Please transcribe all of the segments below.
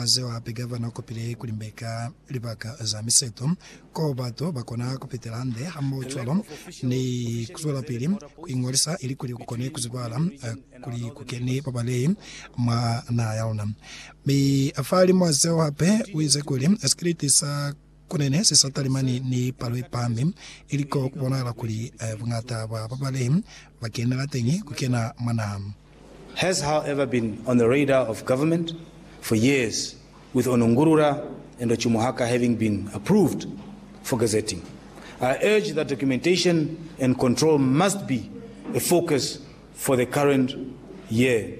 Zeo hape Gavana ukopile kulimbeka libaka za miseto ko batu bakona kupitela hande hamohocwalo ni kuzwelapili kuingolisa ilikuli kukone kuzibala kuli kukeni babalei mwa naha yaluna. Mi fahalimu wa zeo hape uize kuli sikiliti sa Ku ne ni sisa talimani ni palo ye pami, ili ko ku bonahala kuli buñata bwa ba bale ba kenela teñi ku kena mwa naha. has however been on the radar of government for years with Onungurura and Ochumuhaka having been approved for gazetting. I urge that documentation and control must be a focus for the current year.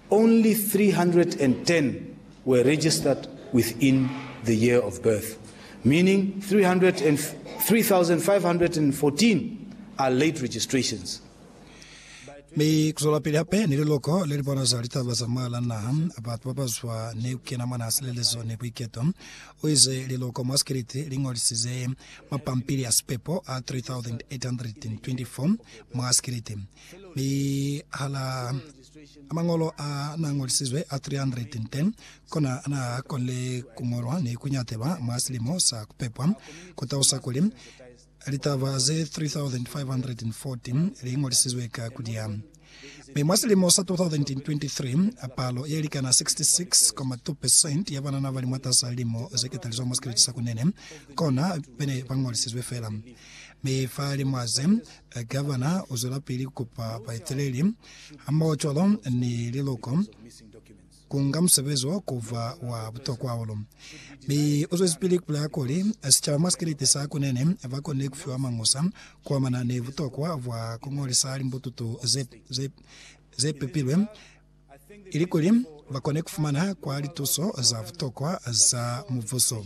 Only 310 were registered within the year of birth, meaning 3,514 are late registrations. Mi kuzwelapili hape ni liloko lelibona za litaba za mwalaa naha, batu babazwa ni kukena mwa naha silelezo ni buiketo, uize liloko mwa sikiliti lingolisize mapampili a sipepo a 3,824 mwa sikiliti, mi halaa Mañolo a na ñolisizwe a 310 kona na konile ku ñolwa ni ku nyatelwa mwa silimo sa ku pepwa, ku talusa kuli, litaba ze 3,514 li ñolisizwe ka ku liya. Mi mwa silimo sa 2023, palo ye likana 66.2 percent ya banana ba li mwatas'a lilimo ze ketalizwa mwa sikeleti sa kunene kona be ne ba ñolisizwe fela. Mi fa limwaze, Gavana u zwelapili ku kupa baeteleli Hambaho-cwalo ni liluko, kunga musebezi wo kuba wa butokwa hahulu. Mi u zwezipili kupulaya kuli, Sicaba mwa sikeleti sa kunene ba konile kufiwa mañusa kuamana ni butokwa bwa kuñolisa limbututu ze, ze, ze pepilwe ilikuli bakone kufumana kwa lituso za butokwa za mubuso.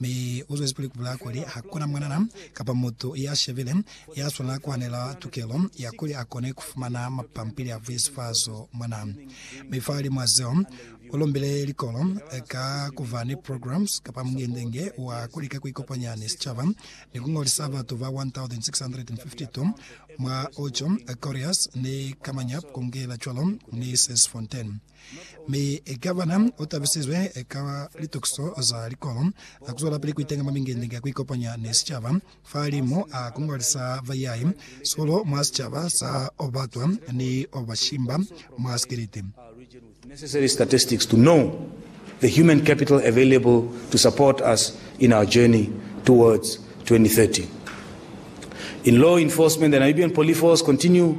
Mi u zwezi pili ku bulaya kuli ha kuna mwanana kapa mutu ya shebile ya swanela ku hanela tukelo ya kuli a kone ku fumana mapampili a vuisifazo mona. Mi fahali mwa zeo, u lumbile likolo ka ku ba ni programs kapa mungende-nge wa ku lika ku ikopanya ni sicaba ni ku ngolisa batu ba 1,652 mwa Ocho, Correas ni Kamanyap ku ngela cwalo ni Sesfontein. Mi ka bana u tabisizwe ka litukiso za likolo za ku zwelapili ku itenga mwa mingendenge ya ku ikopanya ni sicaba. Fahalimu a ku ngwalisa bayai sikolo mwa sicaba sa Obatwa ni Obashimba mwa Sikiliti, necessary statistics to know the human capital available to support us in our journey towards 2030. In law enforcement, the Namibian Poliforce continue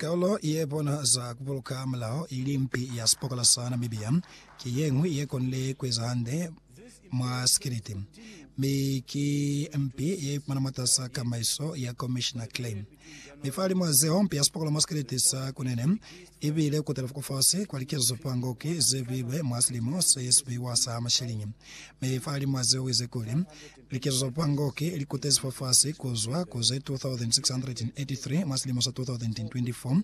Kolo ye bona za ku buluka mulao ili mpi ya sipokola sa Namibia ki ye ñwi ye konile ku eza hande mwa sikiliti, mi ki mpi ye ipumana mwatasaa kamaiso ya Komishina Clay. Mi fahalimwaa zeo, mpi ya sipokola mwa sikiliti sa Kunene i bile ku telefuka fasi kwa likezo fa ngoki ze bilwe mwa silimo se sibiwa sa mashiliñi. Mi fahalimwaa zeo, u ize kuli, Likezo za Pangoc li kutezi fafasi ku zwa ku ze 2,683 mwa silimo sa 2024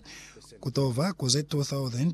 ku to ba ku ze 2,000